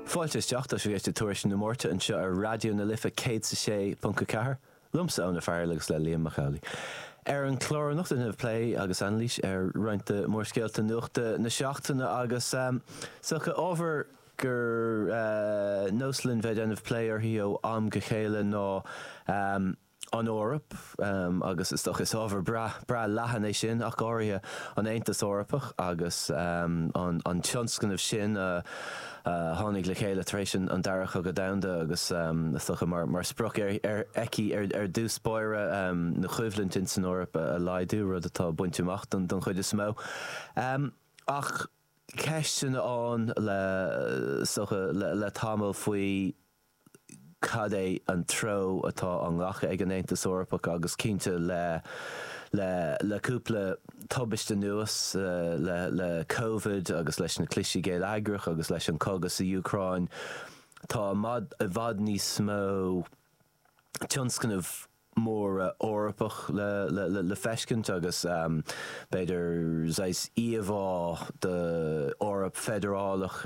Fáilte isteach, tá sibh ag éisteacht le Tuairisc na Máirte anseo ar Raidió na Life 106.4, liomsa Eoin Ó Fearghaíl agus le Liam Mac Amhlaigh. Ar an chlár anocht déanfaimid plé agus anailís ar roinnt de mhórscéalta nuachta na seachtaine agus is dócha ábhar gur nós linn bheith ag déanamh plé uirthi ó am go chéile ná an Eoraip agus is dócha is ábhar breá leathan é sin, ach go háirithe an Aontas Eorpach agus an tionscnamh sin a tháinig le chéile tar éis an Dara Cogadh Domhanda agus is dócha mar sprioc aici ar dtús báire ná coimhlint ins an Eoraip a laghdú, rud atá bainte amach don chuid is mó. Ach ceisteanna ann is dócha le tamall faoi. cad é an treo atá á ghlacadh ag an Aontas Eorpach agus cinnte le le cúpla tubaiste anuas, le Covid agus leis na clistí geilleagracha agus leis an cogadh san Úcráin, tá i bhfad níos mó tionscnamh móra Eorpach le feiscint agus b'fhéidir saghas íomhá d'Eoraip feidearálach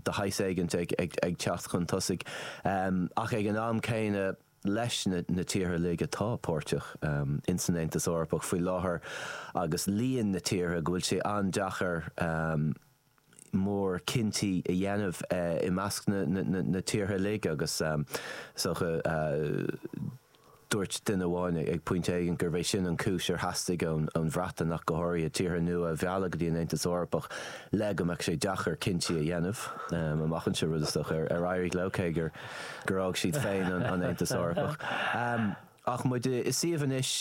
de shaghas éigint ag teacht chun tosaigh, ach ag an am céanna leis na tíortha uilig atá páirteach in san Aontas Eorpach faoi láthair agus líon na tíortha go bhfuil sé an-deacair, mórchinntí a dhéanamh i measc na tíortha uilig agus is dócha dúirt duine amháin ag pointe éigin gurbh é sin an chúis ar theastaigh ón Bhreatain ach go háirithe tíortha nua a mhealladh go dtí an Aontas Eorpach le go mbeadh sé deacair cinntí a dhéanamh amach anseo, rud is dócha ar éirigh leo, cé gur fhág siad féin an Aontas Eorpach. Ach muid i suíomh anois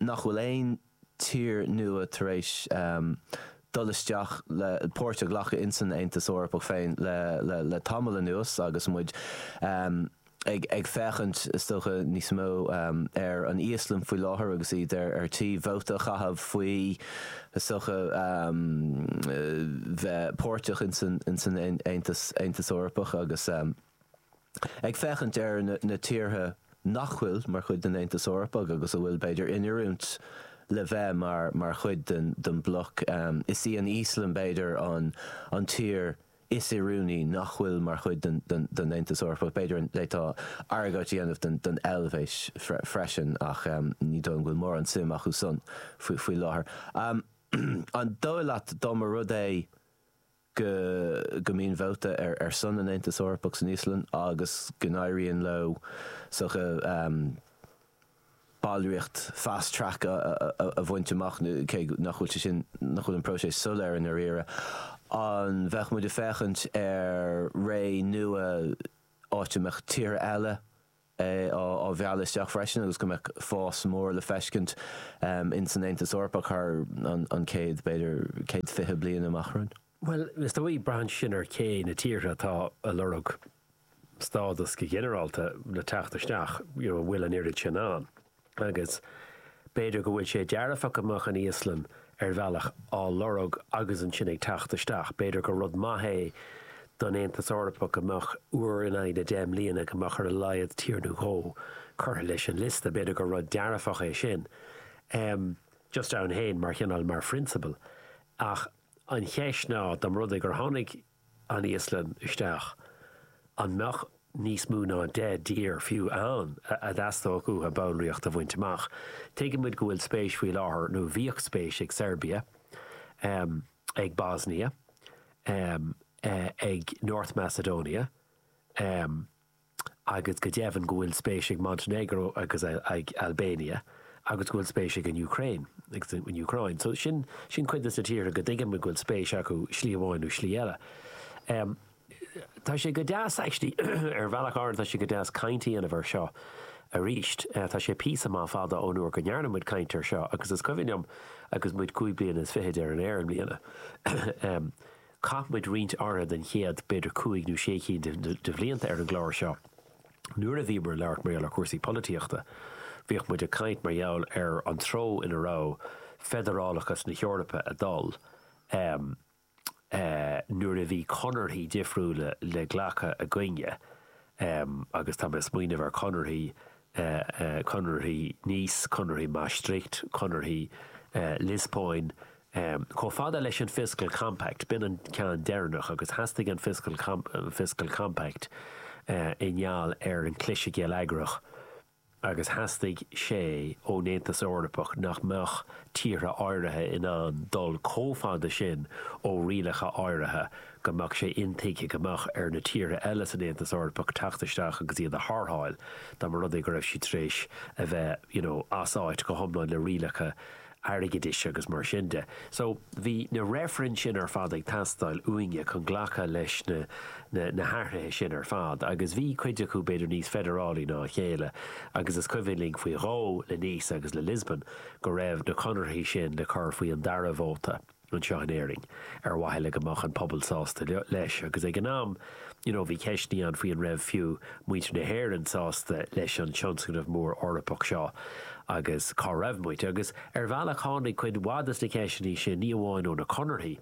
nach bhfuil aon. tír nua tar éis dul isteach le páirt a ghlacadh in san Aontas Eorpach féin le le tamall anuas agus muid ag féachaint, is dócha, níos mó ar an Íoslainn faoi láthair agus iad ar tí vóta a chaitheamh faoi, is dócha, bheith páirteach in san Aontas Eorpach agus. Ag féachaint ar na tíortha nach bhfuil mar chuid den Aontas Eorpach agus a bhfuil, b'fhéidir, in oiriúint le bheith mar chuid den bhloc, is í an Íoslainn, b'fhéidir, an tír is oiriúnaí nach bhfuil mar chuid den Aontas Eorpach. B'fhéidir d'fhéadfá argóint a dhéanamh don Eilvéis freisin ach ní dócha go bhfuil mórán suim acu san faoi láthair. An dóigh leat dá mba rud é go mbíonn vóta ar son an Aontais Eorpach san Íoslainn agus go n-éiríonn leo ballraíocht fast track a bhaint amach, cé nach bhfuil sé sin, nach bhfuil an próiseas soiléir i ndáiríre. An mbeadh muid ag féachaint ar ré nua áit a mbeadh tíortha eile, á mealladh isteach freisin agus go mbeadh fás mór le feiscint in san Aontas Eorpach thar an chéad, b'fhéidir céad fiche bliain amach romhainn. Bhuel, is dóigh, braitheann sin ar cé na tíortha atá a' lorg stádas go ginearálta le teacht isteach, you know, an bhfuil an oiread sin ann. Agus b'fhéidir go bhfuil sé dearfach go mbeadh an Íoslainn, ar bhealach, á lorg agus ansin ag teacht isteach. B'fhéidir gur rud maith é don Aontas Eorpach go mbeadh, uair in aghaidh na deich mbliana, go mbeadh ar a laghad tír nó dhó curtha leis an liosta. B'fhéidir gur rud dearfach é sin, just ann féin, mar chineál, mar phrionsabal. Ach an cheist ná, dá mba rud é gur tháinig, an Íoslainn isteach, an mbeadh níos mó ná deich dtír fiú ann a dteastódh uathu ballraíocht a bhaint amach? Tuigeann muid go bhfuil spéis faoi láthair, nó bhíodh spéis ag Seirbia, ag Bosnia, ag North Macedonia, agus go deimhin go bhfuil spéis ag Montenegro agus ag Albania agus go bhfuil spéis ag an Ukraine agus an Úcráin. So sin, sin cuid de na tíortha go dtuigim go bhfuil spéis acu slí amháin nó slí eile. Em, tá sé go deas, actually, ar bhealach éigin tá sé go deas caint a dhéanamh ar seo arís. Eh, tá sé píosa maith fada ón uair go ndearna muid caint ar seo agus is cuimhin liom agus muid cúig bliana is fichid ar an aer i mbliana, em, Chaith muid roinnt áirithe den chéad, b'fhéidir cúig nó sé cinn de bhlianta ar an gclár seo nuair a bhíomar ag labhairt mar gheall ar chúrsaí polaitíochta. Bhíodh muid ag caint mar gheall ar an treo ina raibh feidearálachas na hEorpa ag dul nuair a bhí conarthaí difriúla le glacadh againne agus tá mé ag smaoineamh ar chonarthaí, conarthaí Nice, conarthaí Maastricht, conarthaí Liospóin, Chomh fada leis an Fiscal Compact, b'in an ceann deireanach, agus theastaigh an Fiscal Compact i ngeall ar an chliseadh geilleagrach agus theastaigh sé ón Aontas Eorpach nach mbeadh tíortha áirithe in ann dul chomh fada sin ó rialacha áirithe go mbeadh sé intuigthe go mbeadh ar na tíortha eile san Aontas Eorpach teacht isteach agus iad a tharrtháil dá mba rud é go raibh siad tar éis a bheith, you know, as áit go hiomlán le rialacha airgeadais agus mar sin de. So, bhí na reifrinn sin ar fad ag teastáil uainne chun glacadh leis na, na, na hathruithe sin ar fad agus bhí cuid acu b'fhéidir níos feidearálaí ná a chéile agus is cuimhin linn faoi dhó le Nice agus le Lisbon go raibh na conarthaí sin le cur faoi an dara vóta. anseo in Éirinn, ar mhaithe le go mbeadh an pobal sásta leis. Agus ag an am, you know, bhí ceisteannaí ann faoi an raibh fiú muintir na hÉireann sásta leis an tionscnamh mór Eorpach seo agus cá raibh muid. Agus ar bhealach tháinig cuid mhaith de na ceisteannaí sin ní amháin ó na conarthaí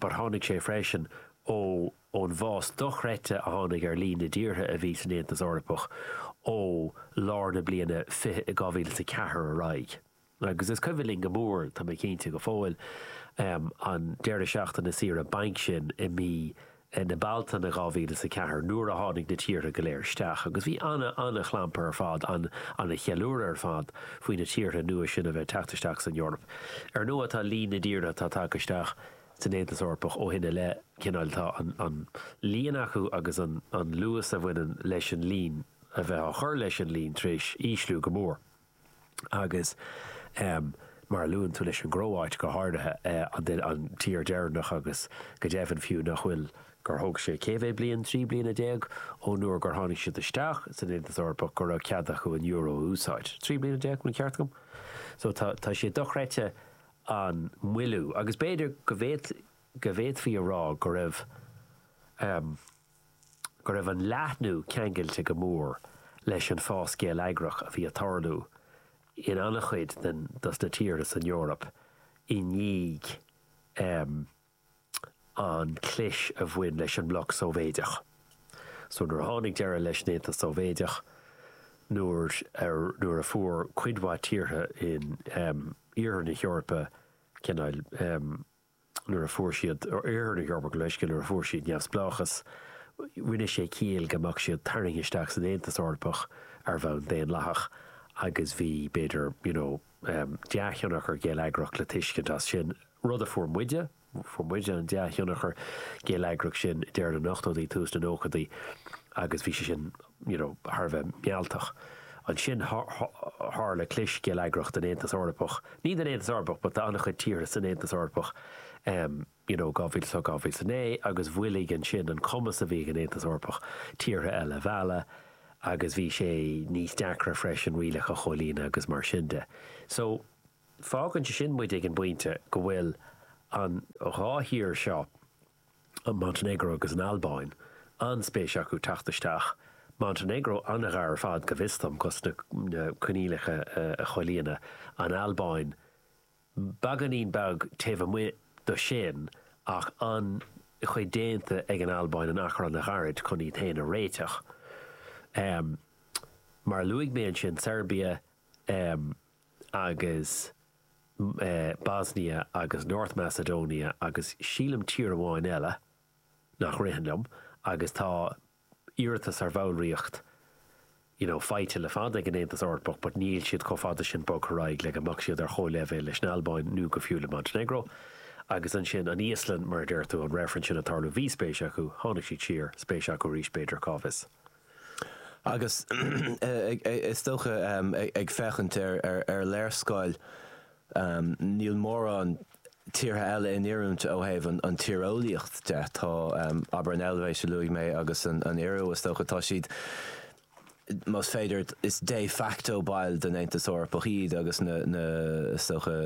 but tháinig sé freisin ó ón bhfás dochreidte a tháinig ar líon na dtíortha a bhí san Aontas Eorpach ó lár na bliana 2004 ar aghaidh. Agus is cuimhin linn go mór, tá mé cinnte, go fóill, an deireadh seachtaine saoire bainc sin i mí na Bealtaine 2000 is a ceathair, nuair a tháinig na tíortha go léir isteach. Agus bhí ana, ana chlampar ar fad, ana cheiliúradh ar fad, faoi na tíortha nua sin a bheith ag teacht isteach san Eoraip. Ar ndóigh, tá líon na dtíortha atá tagtha isteach san Aontas Eorpach ó shin i leith, cineál, tá an líon acu agus an luas a bhaineann leis an líon a bheith á chur leis an líon tar éis ísliú go mór. agus mar a luann tú leis an gCróit go háirithe, an tír deireanach agus go deimhin fiú nach bhfuil gur thóg sé cé mhéad bliain, trí bliana déag, ón uair gur tháinig siad isteach san Aontas Eorpach go raibh cead acu an euro a úsáid. Trí bliana déag, an ceart agam? So tá, tá sé dochreidte an moilliú agus b'fhéidir go bhféadfaí a rá go raibh. go raibh an leathnú ceangailte go mór leis an bhfás geilleagrach a bhí ag tarlú in an-chuid den dos na tíortha san Eoraip i ndiaidh an chlis a bhain leis an mbloc Sóivéideach. So nuair a tháinig deireadh leis an Aontas Sóivéideach, nuair a, nuair a fuair cuid mhaith tíortha in Iarthar na hEorpa cineál, nuair a fuair siad Oirthear na hEorpa gabh mo leithscéal, nuair a fuair siad neamhspleáchas, rinne sé ciall go mbeadh siad tarraingthe isteach san Aontas Eorpach ar bhonn daonlathach agus bhí, b'fhéidir, you know, dea-thionchar geilleagrach le tuiscint as sin, rud a fuair muide, fuair muide an dea-thionchar geilleagrach sin i ndeireadh na n-ochtóidí, tús na nóchaidí agus bhí sé sin. you know thar a bheith mealltach. Ansin tharla clis geilleagrach den Aontas Eorpach, ní den Aontas Eorpach but d'an-chuid tíortha san Aontas Eorpach em you know 2008, 2009 agus mhoilligh ansin an cumas a bhí ag an Aontas Eorpach tíortha eile a mhealladh agus bhí sé níos deacra freisin rialacha a chomhlíonadh agus mar sin de. So fágann sé sin muid ag an bpointe go bhfuil an dhá thír seo, an Montainéagró agus an Albáin, an-spéis acu teacht isteach, Montainéagró an-ghar ar fad, go bhfios dom, dos na coinníollacha a chomhlíonadh, an Albáin beagáinín beag taobh amuigh do sin ach an-chuid déanta ag an Albáin in achar an-ghairid chun iad féin a réiteach. Mar a luaigh mé ansin, Seirbia agus. Bosnia agus North Macedonia agus sílim tír amháin eile nach ritheann liom agus tá iarratas ar bhallraíocht you know faighte le fada ag an Aontas Eorpach but níl siad chomh fada sin bogtha ar aghaidh le go mbeadh siad ar chomhleibhéal leis an Albáin nó go fiú le Montenegro agus ansin an Íoslainn mar a deir tú an reifreann sin ag tarlú bhí spéis acu tháinig siad siar spéis acu arís b'fhéidir cá bhfios. Agus is dócha, ag féachaint ar léarscáil, níl mórán tíortha eile in oiriúint ó thaobh an tíreolaíocht de. Tá, abair, an Eilvéis, a luaigh mé, agus an Iorua, is dócha, tá siad, más féidir, is de facto baill den Aontas Eorpach iad agus na, is dócha,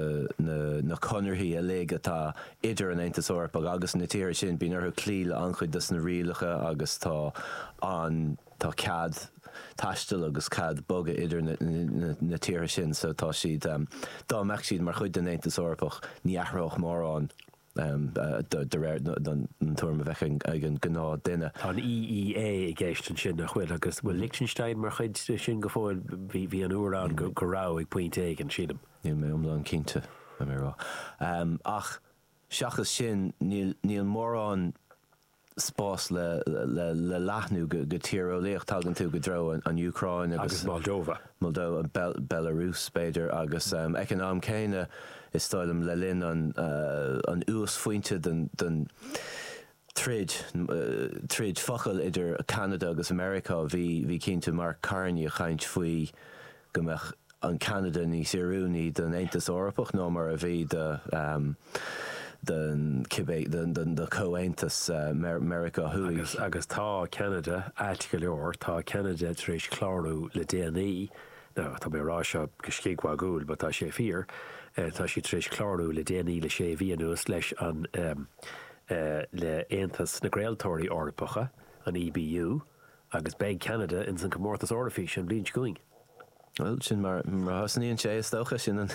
na conarthaí uilig atá idir an Aontas Eorpach agus na tíortha sin, bíonn orthu cloí le an-chuid dos na rialacha agus tá an, tá cead taistil agus cead bogadh idir na tíortha sin so tá siad, dá mbeadh siad mar chuid den Aontas Eorpach, ní athródh mórán de réir an tuairim a bheadh ag an gnáth duine. Tá an EEA i gceist ansin, nach bhfuil? Agus bhfuil Lichtenstein mar chuid sin go fóill? Bhí an uair ann go raibh, ag pointe éigin, sílim. Níl mé iomlán cinnte. Ach seachas sin, níl mórán spás le leathnú go tíreolaíocht. Tagann tú i dtreo an Úcráin agus Moldova, Belarus, b'fhéidir, agus ag an am céanna, is dóigh liom, le linn an uasphointe den troid, troid focal idir Ceanada agus Meiriceá. Bhí, bhí cinnte Mark Carney a chaint faoi go mbeadh an Ceanada níos oiriúnaí don Aontas Eorpach ná mar a bhí don, don cibé, do Chomhaontas Meiriceá Thuaidh. Agus, agus tá Ceanada ait go leor, tá Ceanada tar éis clárú le déanaí, now tá mé a rá seo go scigmhagúil but tá sé fíor, tá siad tar éis clárú le déanaí le sé mhí anuas leis an, le Aontas na gCraoltóirí Eorpacha, an EBU, agus beidh Ceanada ins an Comórtas Eoraifíse an bhliain seo chugainn. Bhuel, sin mar a thosnaíonn sé, is dócha. Sin an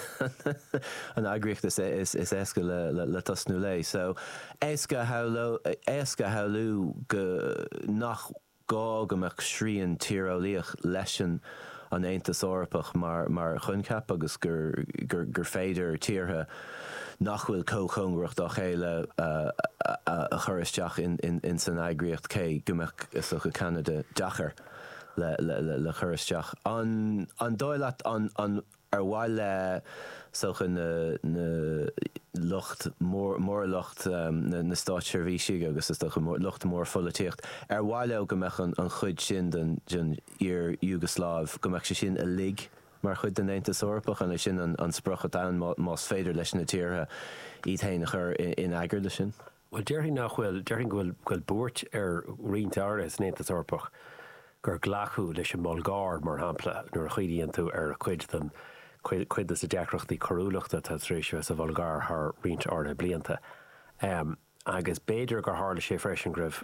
eagraíocht is éasca le tosnú léi. So, éasca a shamhlú go nach. gá go mbeadh srian tíreolaíoch leis an, an Aontas Eorpach mar choincheap agus gur féidir tíortha nach bhfuil chomh cóngarach dá chéile a chur isteach ins an eagraíocht cé go mbeadh is dócha Ceanada deacair le cur isteach. An dóigh leat Ar mhaith le, is dócha, na lucht mór, mór lucht na státseirbhísigh agus is dócha lucht mórpholaitíocht, ar mhaith leo go mbeadh an chuid sin den iar-Iúgasláiv, go mbeadh sé sin uilig mar chuid den Aontas Eorpach? An é sin an sprioc atá ann más féidir leis na tíortha iad féin a chur in eagar leis sin? Bhuel, déarfainn nach bhfuil, déarfainn go bhfuil, go bhfuil buairt ar roinnt acu san Aontas Eorpach gur glacadh leis an mBulgáir, mar shampla, nuair a chuimhníonn tú ar chuid den, cuid, cuid de na deacrachtaí coiriúlachta atá tar éis a bheith sa Bhulgáir thar roinnt áirithe blianta. Agus b'fhéidir gur tharla sé freisin go raibh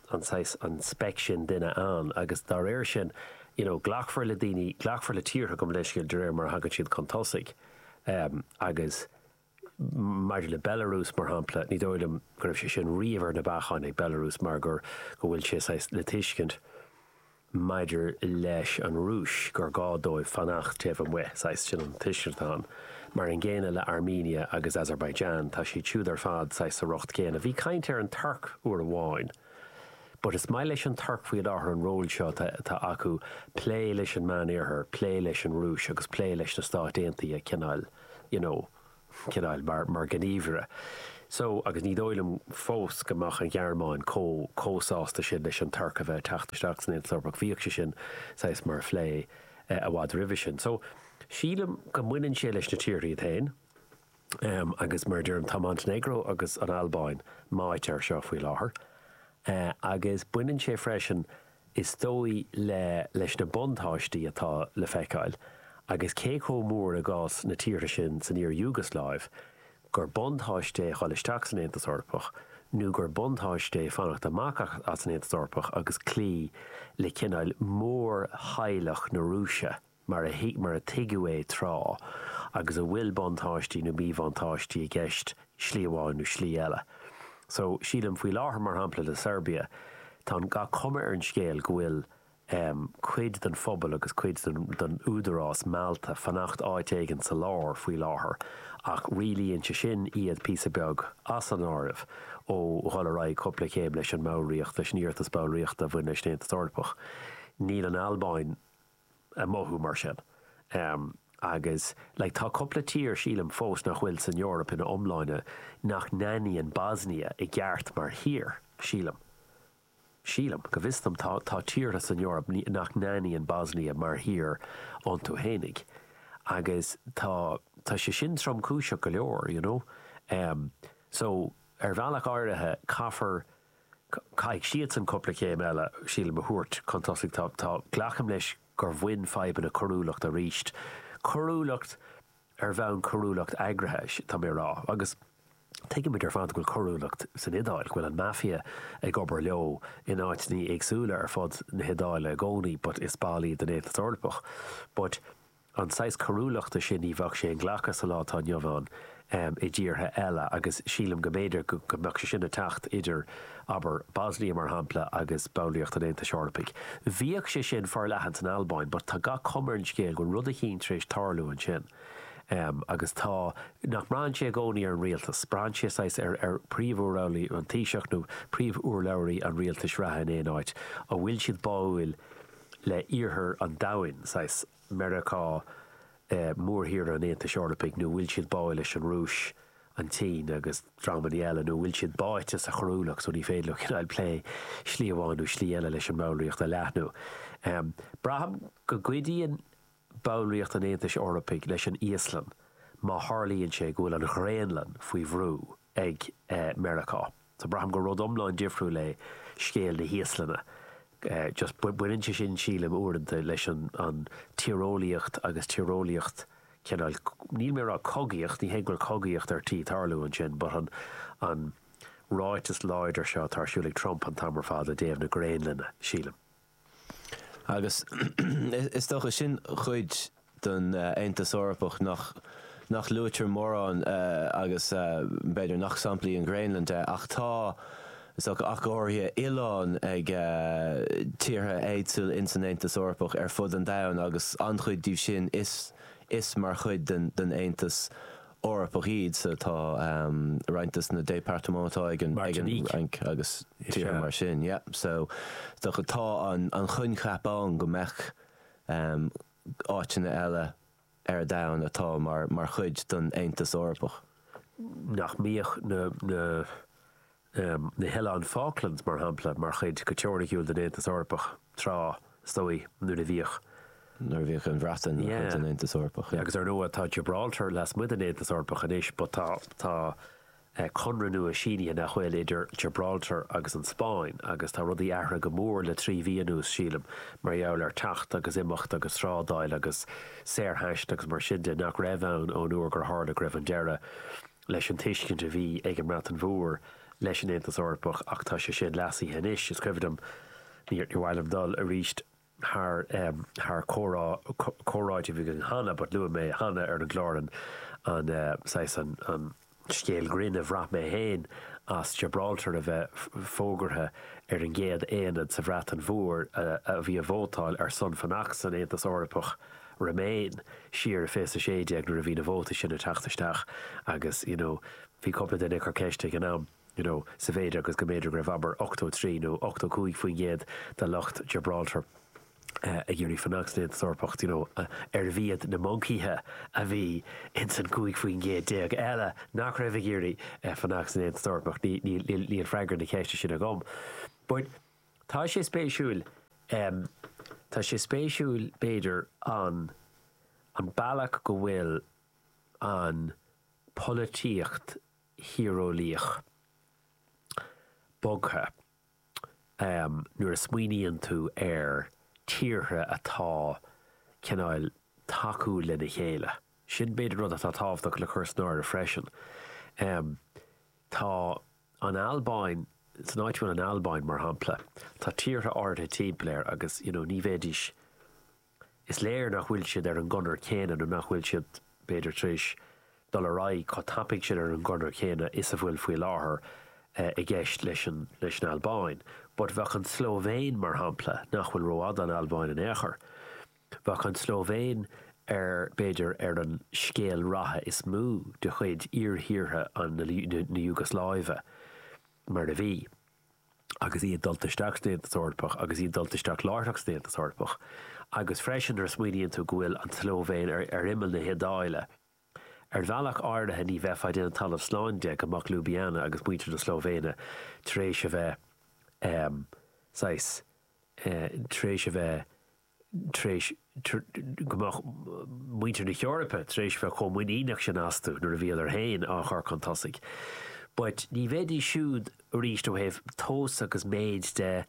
an saghas, an speic sin duine ann agus dá réir sin you know glacfar le daoine, glacfar le tíortha gabh mo leithscéal, de réir mar a thagann siad chun tosaigh ehm agus maidir le Belarus mar shampla ní dóigh liom go raibh sé sin riamh ar na bacáin ag Belarus mar gur go bhfuil sé saghas le tuiscint maidir leis an Rúis, gur gá dóibh fanacht taobh amuigh, saghas, sin an tuiscint atá ann. Mar an gcéanna le Armenia agus Azerbaijan, tá siad siúd ar fad saghas sa riocht céanna. Bhí caint ar an Tuirc uair amháin, but is maith leis an Tuirc faoi láthair an ról seo atá acu, plé leis an Meánoirthear, plé leis an Rúis agus plé leis na Stáit Aontaithe cineáil, you know. Cineál mar ghníomhaire. So, agus ní dóigh liom fós go mbeadh an Ghearmáin chomh sásta sin leis an Tuirc a bheith ag teacht isteach san Aontas Eorpach, bhíodh sé sin saghas á phlé i bhfad roimhe sin. So, sílim go mbaineann sé leis na tíortha iad féin. Agus mar a deirim, tá Montainéagró agus an Albáin meáite air seo faoi láthair. Agus baineann sé freisin Is dóigh le leis na buntáistí atá le feiceáil, agus cé chomh mór i gcás na tíortha sin san iar-Iúgasláiv, gur buntáiste é dhul isteach san Aontas Eorpach nó gur buntáiste é fanacht amach as an Aontas Eorpach agus cloí le cineál mórtheaghlach na Rúise. mar a thuig, mar a tuigeadh é tráth, agus a bhfuil buntáistí nó míbhuntáistí i gceist slí amháin nó slí eile. So, sílim, faoi láthair, mar shampla, le Seirbia, tá an, tá gach cuma ar an scéal go bhfuil ehm, cuid den phobal agus cuid den, den údarás meáite ar fanacht áit éigin sa lár faoi láthair ach rialaíonn sé sin iad píosa beag as an áireamh ó dhul ar aghaidh cúpla céim leis an mballraíocht, leis an iarratas ballraíochta a bhain leis an Aontas Eorpach. Níl an Albáin. ag mothú mar sin. Agus like tá cúpla tír, sílim, fós nach bhfuil san Eoraip ina iomláine nach n-aithníonn Bosnia i gceart mar thír, sílim. Sílim. Go bhfios dom, tá tá tíortha san Eoraip nach n-aithníonn Bosnia mar thír iontu fhéinig. Agus tá tá sé sin tromchúiseach go leor, you know. So ar bhealach áirithe caithfear Caithfidh siadsan cúpla céim eile, sílim, a thabhairt chun tosaigh. Tá, tá, glacaim leis gur bhain fadhbanna coiriúlacht arís, coiriúlacht ar bhonn coiriúlacht eagraithe, tá mé a rá. Agus tuigeann muid ar fad go bhfuil coiriúlacht san Iodáil, go bhfuil an Mafia ag obair leo in áiteanna éagsúla ar fud na hIodáile i gcónaí but is ball iad den Aontas Eorpach. But. an saghas coiriúlachta sin ní bheadh sé inghlactha sa lá atá inniu ann i dtíortha eile agus sílim go mb'fhéidir go mbeadh sé sin ag teacht idir, abair, Bosnia, mar shampla, agus ballraíocht an Aontais Eorpaigh. Bhíodh sé sin forleathan san Albáin but tá gach cuma ar an scéal go bhfuil rud eicínt tar éis tarlú ansin agus tá, nach mbraitheann sé i gcónaí ar an rialtas, braitheann sé saghas ar, ar phríomhurlabhraí, an Taoiseach nó príomhurlabhraí an rialtais reatha in aon áit, an bhfuil siad báúil le iarthar an domhain, saghas Meiriceá, mórthír an Aontais Eorpaigh, nó an bhfuil siad báuil leis an Rúis, an tSín agus dreamannaí eile, nó an bhfuil siad báite sa choiriúlacht so ní féidir leo cineáil plé slí amháin nó slí eile leis an mballraíocht a leathnú. Braithim go gcuidíonn ballraíocht an Aontais Eorpaigh leis an Íoslainn má tharlaíonn sé go bhfuil an Ghraonlainn faoi bhrú ag Meiriceá. So braithim gur rud iomlán difriúil é scéal na hÍoslainne. Just baineann sé sin, sílim, uaireanta leis an tíreolaíocht agus tíreolaíocht cineál, níl mé ag rá cogaíocht, ní hé go bhfuil cogaíocht ar tí tarlú ansin but an ráiteas láidir seo atá ar siúl ag Trump an t-am ar fad i dtaobh na Graonlainne, sílim. Agus is dócha, sin cuid den Aontas Eorpach nach luaitear mórán agus b'fhéidir nach sampla í an Ghraonlainn de, ach tá, is dócha, ach go háirithe, oileáin ag tíortha éagsúla ins an Aontas Eorpach ar fud an domhain agus an-chuid díobh sin is mar chuid den Aontas Eorpach iad so tá roinnt de na départements atá ag an Fhrainc agus tíortha mar sin. Yeah. So tá tá an coincheap ann go mbeadh áiteanna eile ar domhan atá mar mar chuid don Aontas Eorpach. nach mbíodh na na. na hOileáin Falklands, mar shampla, mar chuid go teoiriciúil den Aontas Eorpach, tráth, is dóigh, nuair a bhíodh. nuair a bhíodh an Bhreatain mar chuid den Aontas Eorpach. Agus, ar ndóigh, tá Gibraltar lasmuigh den Aontas Eorpach anois, but tá, tá conradh nua sínithe, nach bhfuil, idir Gibraltar agus an Spáinn, agus tá rudaí athraithe go mór le trí mhí anuas, sílim, mar gheall ar teacht agus imeacht agus trádáil agus saorthaisteal agus mar sin de, nach raibh ann ón uair gur tharla go raibh an deireadh. leis an tuiscint a bhí ag an mBreatain Mhór leis an Aontas Eorpach ach tá sé sin leasaithe anois. Is cuimhin liom, níor mhaith liom dul arís thar comhrá, comhráite a bhí againn cheana but luaigh mé cheana ar an gclár an saghas, an scéal grinn a bhraith mé féin ar Gibraltar a bheith fógartha ar an gcéad aonad sa Bhreatain Mhór a bhí ag vótáil ar son fanacht san Aontas Eorpach. Remain, siar i 2016 nuair a bhí na vótaí sin ag teacht isteach agus you know bhí cúpla duine ag cur ceiste ag an am you know sa mhéid agus go mb'fhéidir go raibh abair 83 nó 85 faoin gcéad de lucht Gibraltar ag iarraidh fanacht san Aontas Eorpach d'you know arbh iad na moncaíthe a bhí ins an 15 faoin gcéad eile nach raibh ag iarraidh fanacht san Aontas Eorpach? Níl freagra na ceiste sin agam. But. Tá sé spéisiúil, em, tá sé spéisiúil, b'fhéidir, an, an bealach go bhfuil an pholaitíocht thíreolaíoch bogtha, em, nuair a smaoiníonn tú ar tíortha atá, cineál, tacúil lena chéile. Sin, b'fhéidir, rud atá tábhachtach le cur san áireamh freisin. Em, tá, an Albáin, san áit a bhfuil an Albáin, mar shampla, tá tíortha áirithe timpeall air agus, you know, ní bheidís, is léir nach bhfuil siad ar an gconair chéanna nó nach bhfuil siad, b'fhéidir, tar éis dul ar aghaidh chomh tapaidh sin ar an gconair chéanna is a bhfuil faoi láthair i gceist leis an, leis an Albáin. But bheadh an tSlóivéin, mar shampla, nach bhfuil rófhada ón Albáin in aon chor, Bheadh an tSlóivéin ar, b'fhéidir, ar an scéal ratha is mó de chuid iarthíortha na hIúgslaive, mar a bhí, agus iad dulta isteach san Aontas Eorpach, agus iad dulta isteach láithreach san Aontas Eorpach. Agus freisin, nuair a smaoiníonn tú go bhfuil an tSlóivéin ar imeall na hIodáile, ar bhealach áirithe ní bheifeá ag déanamh talamh slán de go mbeadh Ljubljana agus muintir na Slóivéine tar éis a bheith, saghas, tar éis a bheith, tar éis go mbeadh muintir na hEorpa tar éis bheith chomh muiníneach sin astu nuair a bhíodar féin á chur chun tosaigh. But ní bheidís siúd arís ó thaobh tomhas agus méid de,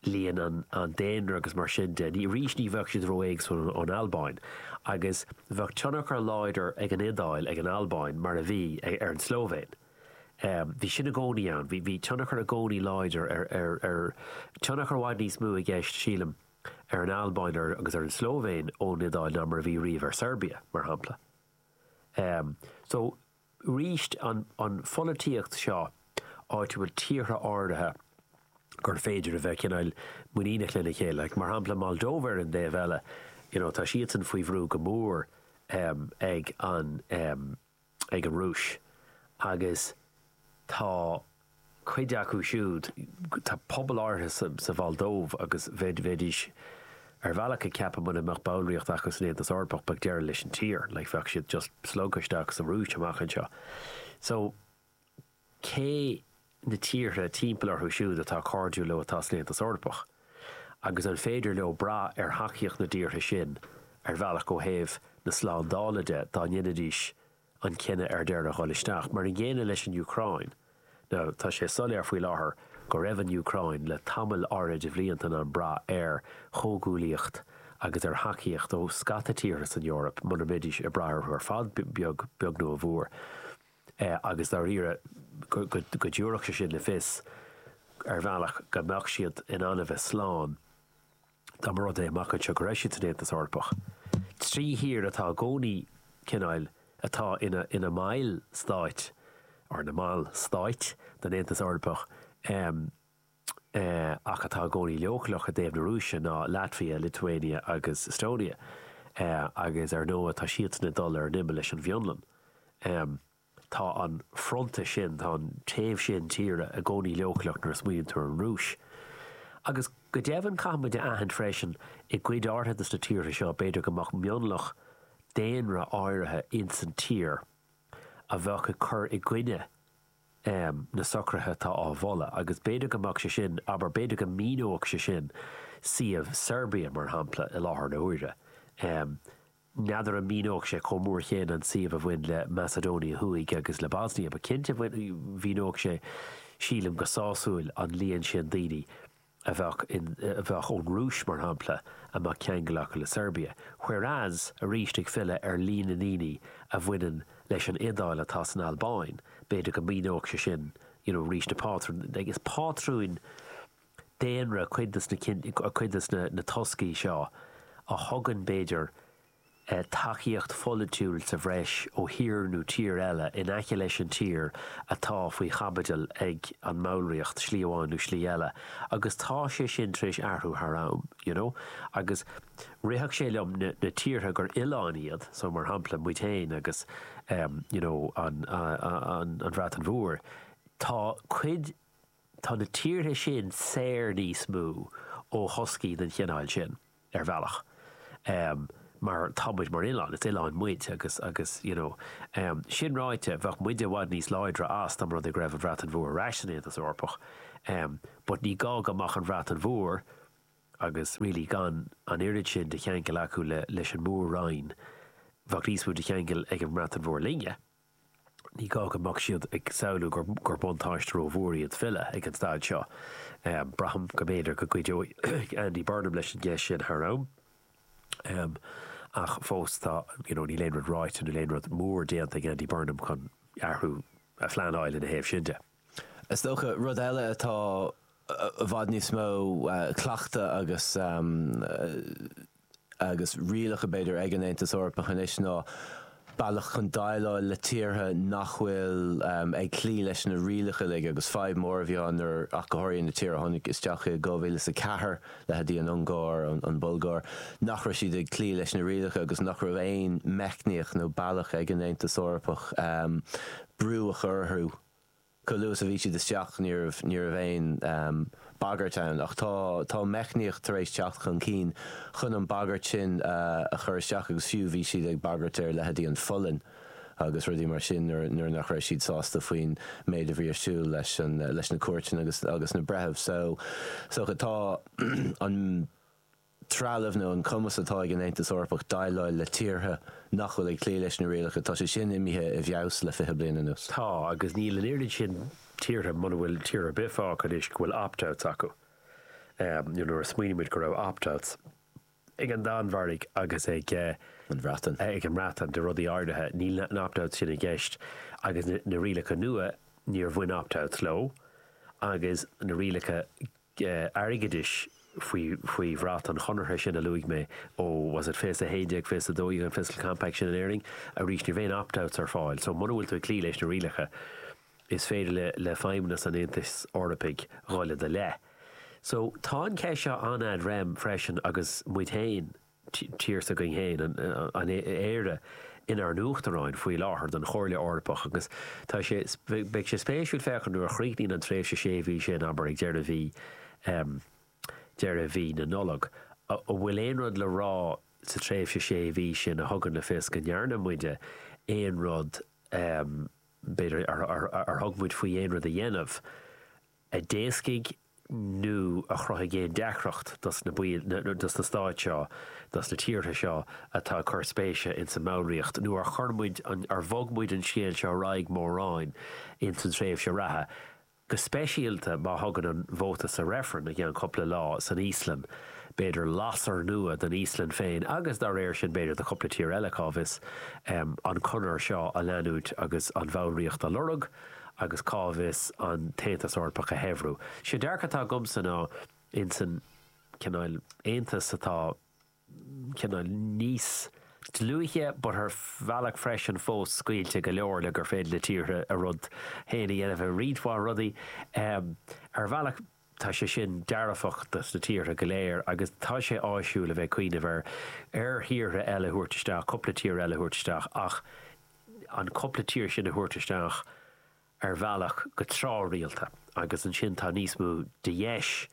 líon an daonra agus mar sin de, arís ní bheadh siad ró-éagsúil ón Albáin. Agus bheadh tionchar láidir ag an Iodáil, ag an Albáin, mar a bhí, ar an tSlóivéin. Bhí sin i gcónaí ann, bhí tionchar i gcónaí láidir ar, tionchar i bhfad níos mó i gceist, sílim, ar an Albáin agus ar an tSlóivéin ón Iodáil ná mar a bhí riamh ar Seirbia, mar shampla. So, arís, an pholaitíocht seo áitiúil, tíortha áirithe gur féidir a bheith cineál muiníneach lena chéile, mar shampla Moldóva ar an dtaobh eile, you know, tá siadsan faoi bhrú go mór ag an, ag an Rúis agus tá cuid acu siúd, tá pobail áirithe sa Mholdóiv agus bheidís ar bhealach ag ceapadh mura mbeadh ballraíocht acu san Aontas Eorpach beidh deireadh leis an tír, like bheadh siad just slogtha isteach sa Rúis amach anseo. So. cé na tíortha timpeall orthu siúd atá cairdiúil leo atá san Aontas Eorpach, agus an féidir leo brath ar thacaíocht na dtíortha sin ar bhealach ó thaobh na slándála de dá ndéanfaidís an cinneadh ar deireadh dhul isteach? Mar an gcéanna leis an Úcráin. Now, tá sé soiléir faoi láthair go raibh an Úcráin le tamall áirithe de bhlianta in ann brath ar chomhghuaillíocht agus ar thacaíocht ó scata tíortha san Eoraip mura mbeidís ag brath orthu ar fad, beag nó a mhór. agus dáiríre go dtabharfadh sé sin le fios, ar bhealach, go mbeadh siad in ann a bheith slán dá mba rud é, amach anseo, go raibh siad san Aontas Eorpach. Trí thír atá i gcónaí, cineáil, atá ina mbaill stáit, nó ina mbaill stáit, den Aontas Eorpach. ach atá i gcónaí leochaileach i dtaobh na Rúise ná Latvia, Lithuania agus Estonia, agus ar ndóigh tá siadsan ag dul ar an imeall leis an bhFionlainn. Tá an fronta sin, tá an taobh sin tíre, i gcónaí leochaileach nuair a smaoiníonn tú ar an Rúis. Agus go deimhin caithfimid a aithint freisin, i gcuid áirithe des na tíortha seo, b'fhéidir go mbeadh mionlach daonra áirithe insan tír a bheadh ag cur i gcoinne, um na socruithe atá á mholadh agus b'fhéidir go mbeadh sé sin, abair, b'fhéidir go míneodh sé sin suíomh Serbia, mar shampla, i láthair na huaire. um N'fheadar an míneodh sé chomh mór chéanna an suíomh a bhain le Macedonia Thuaidh agus le Bosnia, ach cinnte mhíneodh sé, sílim, go sásúil an líon sin daoine. a bheadh, a bheadh ón Rúis, mar shampla, a mbeadh ceangal acu le Seirbia. Whereas, arís ag filleadh ar líon na ndaoine a bhaineann leis an Iodáil atá san Albáin, b'fhéidir go míneodh sé sin, you know, arís na pátrúin, like is pátrúin daonra cuid des na, cuid des na toscaí seo a thugann b'fhéidir, tacaíocht pholaitiúil sa bhreis ó thír nó tír eile in aice leis an tír atá faoi chaibidil ag an mballraíocht, slí amháin nó slí eile, agus tá sé sin tar éis athrú thar am, you know. Agus rithfeadh sé liom na tíortha gur oileáin iad, so, mar shampla, muid féin agus, em, you know, an, an, an Bhreatain Mhór, tá cuid, tá na tíortha sin saor níos mó ó thoscaí den chineál sin. ar bhealach, mar tá muid mar oileán, is oileán muid agus, agus, you know. Sin ráite, bheadh muide i bhfad níos láidre dá mba rud é go raibh an Bhreatain Mhór ar ais san Aontas Eorpach, but ní gá go mbeadh ag an Bhreatain Mhór agus really gan an oiread sin de cheangal acu leis an Mór-Roinn, bheadh níos mó de cheangal ag an mBreatain Mhór linne. Ní gá go mbeadh siad ag samhlú gur buntáiste rómhór é iad filleadh ag an staid seo. Braithim go mb'fhéidir go gcuideoidh Andy Burnham leis an gceist sin thar am, ach fós tá, you know, níl aon rud ráite, níl aon rud mór déanta ag Andy Burnham chun athrú a phleanáil ina thaobh sin de. Is dócha, rud eile atá i bhfad níos mó cleachta agus. agus rialacha, b'fhéidir, ag an Aontas Eorpach anois ná bealach chun déileáil le tíortha nach bhfuil ag cloí leis na rialacha uilig agus fadhb mhór a bhí ann nuair, ach go háirithe na tíortha a tháinig isteach 2004, leithéidí an Ungáir, an Bhulgáir, nach raibh siad ag cloí leis na rialacha agus nach raibh aon meicníocht nó bealach ag an Aontas Eorpach brú a chur orthu. Chomh luath is a bhí siad isteach ní raibh aon bhagairt ann ach tá tá meicníocht tar éis teacht chun cinn chun an bhagairt sin a chur isteach agus fiú bhí siad ag bagairt ar leithéidí an Pholainn agus rudaí mar sin nuair nach raibh siad sásta faoin méid a bhí ar siúl leis na cúirteanna agus na breithimh. So, so tá an. trealamh nó an cumas atá ag an Aontas Eorpach déileáil le tíortha nach bhfuil ag cloí leis na rialacha, tá sé sin imithe i bhfeabhas le fiche bliain anuas. Tá, agus níl an oiread sin tíortha, muna bhfuil tír ar bith fágtha anois go bhfuil opt-outs acu. Nuair a smaoiníonn muid go raibh opt-outs ag an Danmhairg agus ag an Bhreatain de rudaí áirithe, níl na opt-outs sin i gceist agus na rialacha nua, níor bhain opt-outs leo agus na rialacha airgeadais faoi faoi bhrat an chonartha sin a luaigh mé ó was it 2011, 2012 an Fiscal Compact sin in Éirinn? Arís, ní raibh aon opt-outs ar fáil. So, muna bhfuil tú ag cloí leis na rialacha, is féidir le le feidhmeannas an Aontais Eorpaigh dhul i do leith. So, tá an ceist seo an-ad rem freisin agus muid féin a. tír s'againn féin, Éire, inár n-uachtaráin faoi láthair don Chomhairle Eorpach agus tá sé, beidh sé spéisiúil féachaint nuair a chríochnaíonn an tréimhse sé mhí sin, abair ag deireadh mhí, deireadh mhí na Nollag, an bhfuil aon rud le rá sa tréimhse sé mhí sin a thugann le fios go ndearna muide aon rud, b'fhéidir, ar thug muid faoi aon rud a dhéanamh. a d'éascaigh nó a chruthaigh aon deacracht dos na baill, nó dos na stáit seo, dos na tíortha seo atá ag cur spéise ins an mballraíocht, nó ar chuir muid an, ar bhog muid an scéal seo ar aghaidh mórán ins an tréimhse reatha, go speisialta má thugann an vóta sa reifreann i gceann cupla lá san Íoslainn, b'fhéidir, lasair nua don Íoslainn féin agus, dá réir sin, b'fhéidir do chupla tír eile, cá bhfios, an conair seo a leanúint agus an bhallraíocht a lorg. agus cá bhfios, an tAontas Eorpach a shaibhriú. Sé dearcadh atá agamsa ná, insan cineál Aontais atá cineál níos dlúithe but ar bhealach freisin fós scaoilte go leor le gur féidir le tíortha a rud féin a dhéanamh i roinnt mhaith rudaí, ar bhealach. Tá sé sin dearfach dos na tíortha go léir agus tá sé áisiúil a bheith ag cuimhneamh ar ar thíortha eile a thabhairt isteach, cúpla tír eile a thabhairt isteach ach an cúpla tír sin a thabhairt isteach ar bhealach go tráthrialta agus ansin tá níos mó de dheis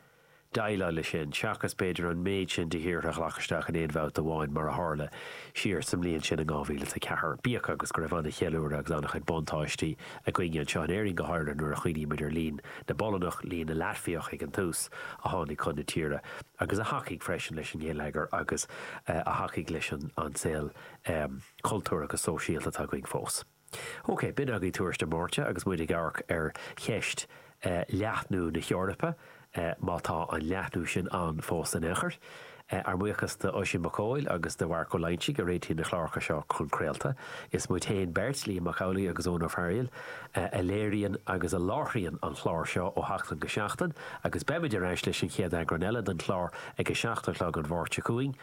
déileáil leis sin seachas b'fhéidir an méid sin de thíortha a ghlac isteach in aon bhabhta amháin mar a tharla siar sa mbliain sin in 2004. Bíodh agus go raibh an-cheiliúradh agus an-chuid buntáistí. againne anseo in Éirinn go háirithe nuair a chuimhníonn muid ar líon na bPolannach, líon na Laitviach ag an tús, a tháinig chun na tíre agus a thacaigh freisin leis an ngeilleagar agus a thacaigh leis an saol cultúrtha agus sóisialta atá againn fós. Ok, b'in againn tuairisc na Máirte agus muid ag amharc ar cheist leathnú na hEorpa, má tá an leathnú sin ann fós in aon chor. Ár mbuíochas d'Oisín Mac Cóil agus do Mharc Ó Loingsigh a réitíonn na cláracha seo chun craolta. Is muid féin beirt, Liam Mac Amhlaigh agus Eoin Ó Fearghaíl, a léiríonn agus a láithríonn an clár seo ó sheachtain go seachtain agus beimid ar ais leis an chéad eagrán eile den chlár ag a seacht a chlog an Mháirt seo chugainn.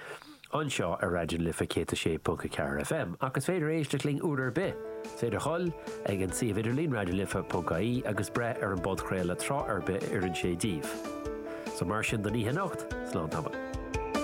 anseo ar Raidió na Life 106.4 FM ach is féidir éisteacht linn uair ar bith. Is féidir dhul chuig an suíomh idirlín raidionalife.ie agus breith ar an bpodchraoladh tráth ar bith a oireann sé díbh. So mar sin don oíche anocht, slán tamall.